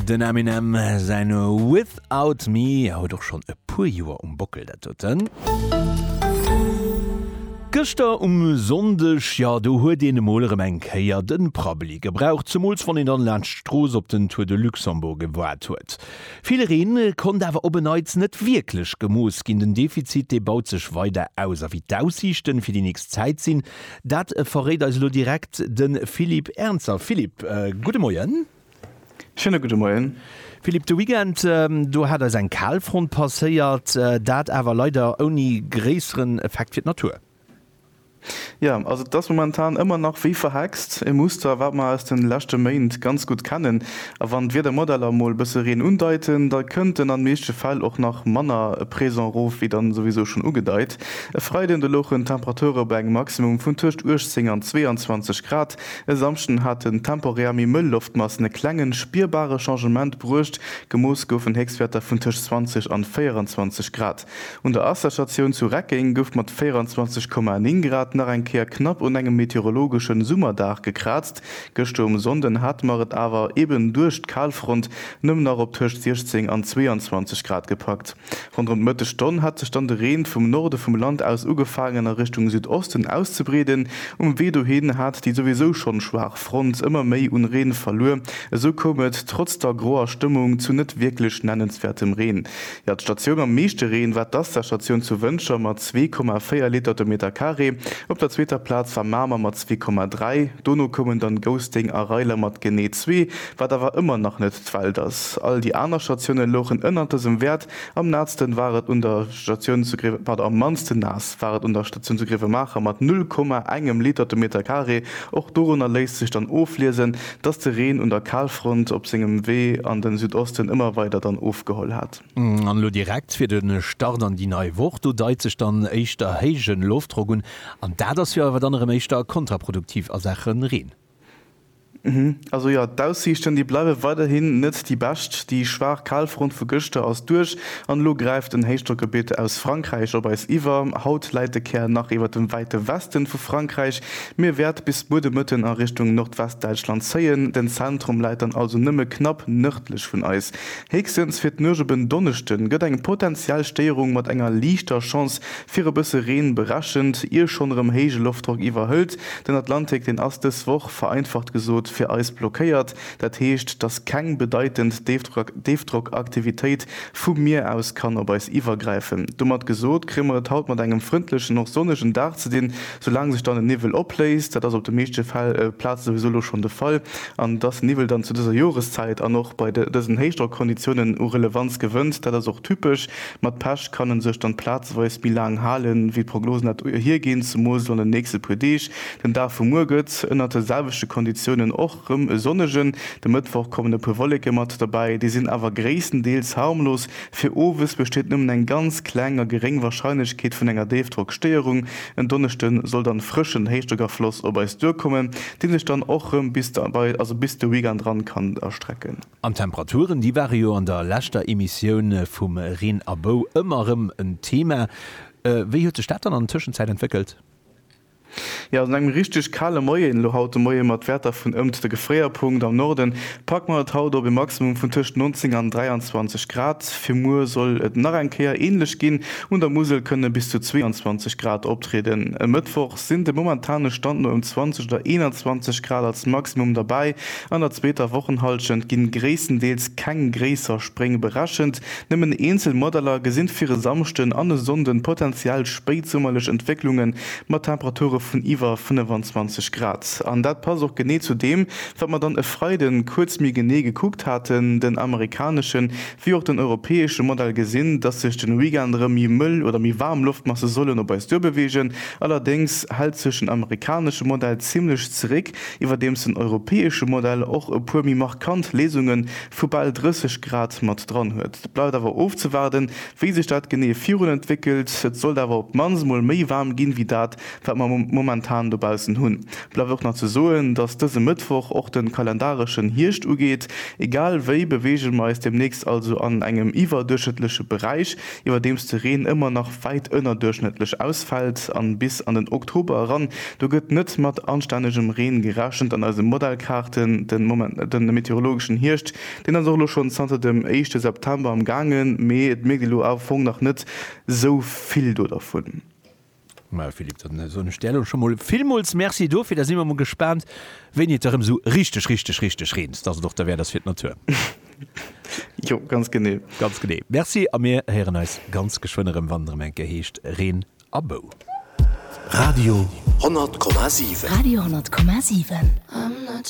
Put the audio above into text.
Den Eminem säin Without Me huet och schonn e puer Joer um Bockel, dat huet en. Gëschter um Sonndeg, jo do huet een emol erëm eng Kéier de Prabbeli gebraucht, zemools wann een dann laanscht d'Strooss op den Tour de Luxembourg gewaart huet. Vill Reen konnt awer op e Neits net wierklech gemooss ginn. Den Defizit dee baut sech weider aus a wéi d'Aussiichten fir déi nächst Zäit sinn, Dat verréit eis elo direkt de Philippe Ernzer. Philippe, gudde Moien. Schéine gudde Moien. Philippe, de Weekend do hat eis eng Kalfront passéiert, dat awer leider ouni gréisseren Effekt fir d'Natur. Jo, also et ass momentan ëmmer nach wéi verhext, e Muster, wat mer aus de leschte Méint ganz gutt kennen. A wann d'Wiedermodeller emol e bësse Reen undeiten, da kënnt en an de meeschte Fäll och nach manner présent erof wéi dann souwisou schonn ugedeit. E Freiden de louchen d'Temperature bei engem Maximum vun tëscht 18 an 22 Grad. E Samschden haten temporär méi mëll Loftmassen e klengen, spierbare Changement bruecht, gemooss goufen Héchstwäerter vun tëscht 20 an 24 Grad. Un der Asserstatioun zu Reckeng gouf mat 24,9 Grad nach eng Kéier knapp un engem meteorologeschen Summerdag gekraazt. Gëschter um Sonnden hate mer et awer, eben duerch d'Kalfront, nëmmen nach op tëscht 16 an 22 Grad gepackt. Ronderëm d'Mëttegstonn hat sech dann de Reen vum Norde vum Land aus ugefaangen a Richtung Südosten auszebreeden. Um Wee dohin hat déi souwisou schonn schwaach Front ëmmer méi un Reen verluer. Esou koum et trotz der groer Stëmmung zu net wierklech nennenswäertem Reen. Jo, d'Statioun mam meeschte Reen war d'Asda-Statioun zu Wëntger mat 2,4 Liter de Meter Carré. Op der zweeter Plaz war Mamer mat 2,3, dono koumen dann Gousténg a Reiler mat genee zwee Wat awer ëmmer nach net d'Welt ass. All déi aner Statioune louchen ënnert dësem Wäert. Am naassten war et un der Statioun zu Gréiwe, pardon, am mannsten naass war et un der Statioun zu Gréiwemaacher mat 0, engem Liter de Meter Carré. Och dorunner léisst sech dann ofliesen, dass de Reen un der Kalfront op sengem Wee an de Südosten ëmmer weider dann ofgeholl hat. An elo direkt fir de Start an déi nei Woch, do deit sech dann éischter héije Loftdrock un, an dat ass jo awer dann erëm éischter kontraproduktiv a Saache Reen. Also jo, d'Aussiichten, déi bleiwe weiderhin net déi bescht. Déi schwaach Kalfront vu gëschter ass duerch an elo gräift en Héichdrockgebitt aus Frankräich op eis iwwer. Haut läit de Kär nach iwwert dem wäite Weste vu Frankräich, mee wäert bis muer de Mëtten a Richtung Nordwestdäitschland zéien. Den Zentrum läit dann also nëmme knapp nërdlech vun eis. Héchstens fir d'Nuecht op en Donneschde gëtt eng potenziell Stéierung mat enger liichter Chance Fir e bësse Reen berechent, ier schonn erëm héije Loftdrock iwwerhëlt den Atlantik. Deen ass dës Woch, vereinfacht gesot, fir eis blockéiert. Dat heescht, dass keng bedeitend Déifdrockaktivitéit vum Mier aus kann op eis iwwergräifen. Domat gesot, kréie mer et haut mat engem frëndlechen, och sonnegen Dag ze dinn, soulaang sech dann den Niwwel opléist. Dat ass op de meeschte Plaze souwisou elo schonn de Fall. An dass den Niwwel dann zu dëser Joreszäit an och bei dësen Héichdrockkonditiounen u Relevanz gewënnt, dat ass och typesch. Mat Pech kann en sech dann plazeweis méi laang halen wéi d'Prognosen dat hierginn, zumols et an den nächsten puer Deeg, den Dag vu muer gëtt ënnert de selwechten Konditiounen och rem e sonnegen. De Mëttwoch kommen e puer Wolleken mat derbäi, déi sinn awer gréisstendeels harmlos. Fir owes besteet nëmmen eng ganz kleng a geréng Warscheinlechkeet vun enger Déifdrockstéierung. En Donneschden soll dann frëschen Héichdrockafloss op eis duerkommen, deen sech dann och rem bis de Weekend ran kann erstrecken. An d'Temperaturen, déi ware jo an der leschter Emissioun vum Reen a Bou ëmmer erëm en Thema. Wéi huet sech dat dann an Tëschenzäit entwéckelt? Jo, also no engem richteg kale Moien elo haut de Moie mat Wäerter vun ëmt de Gefréierpunkt am Norde packe mer et haut op e Maximum vun tëscht 19 an 23 Grad. Fir muer soll et nach eng Kéier änlech ginn, un der Musel kënne bis zu 22 Grad optrieden. E Mëttwoch sinn dem momentane Stand no ëm 20 oder 21 Grad als Maximum derbäi, An der zweeter Wochenhallschent gi gréisstendeels keng gréisser Spréng berechent, nëmmen eenzel Modeller gesinn fir e Samschden an e Sonnden potenziell spéitsummerlech Entwécklunge mat Temperature vun iwwer 25 Grad. An dat passt och genee zu deem, wat mer dann e Freiden kuerz méi genee gekuckt haten, den amerikaneschen wéi och den europäesche Modell gesinn, dass sech den Weekend erëm méi mëll oder méi waarm Loftmasse sollen op eis duerbeweegen. Allerdéngs hält sech den amerikanesche Modell zimmlech zeréck, Iwwerdeems den europäesche Modell och e puer méi markant Léisunge vu bal 30 Grad mat dran huet. Et bleift awer ofzewaarden, wéi sech dat genee virun entwéckelt. Et sollt awer op d'mannst emol méi waarm ginn, wéi dat, wat mer momentan dobaussen hunn. Bleift och nach ze soen, dass dëse Mëttwoch och de kalendareschen Hierscht ugeet. Egal wéi beweege mer eis deemnächst also an engem iwwerduerchschnëttleche Beräich. iwwerdeems de Reen ëmmer nach wäit ënnerduerchschnëttlech ausfält an bis an den Oktober eran. Do gëtt net mat anstännegem Reen gerechent an eise Modellkaarten. Den Moment net den meteorologeschen Hierscht, deen ass och elo schonn zanter dem éischte September am gaangen, mee et mierkt ee lo am Fong nach net sou vill do dervun. Majo Philippe, dann soen ech där elo scho mol villmools Merci dofir. Da si mer mol gespaant wéini et da rëm esou richteg, richteg, richteg reent, dass et och da wäert ass fir d'Natur. Jo, ganz genee. Ganz genee. Merci a mir héieren eis ganz geschwënn erëm, wann et erëm eng Kéier heescht Reen a Bou. Radio 100,7. Radio 100,7.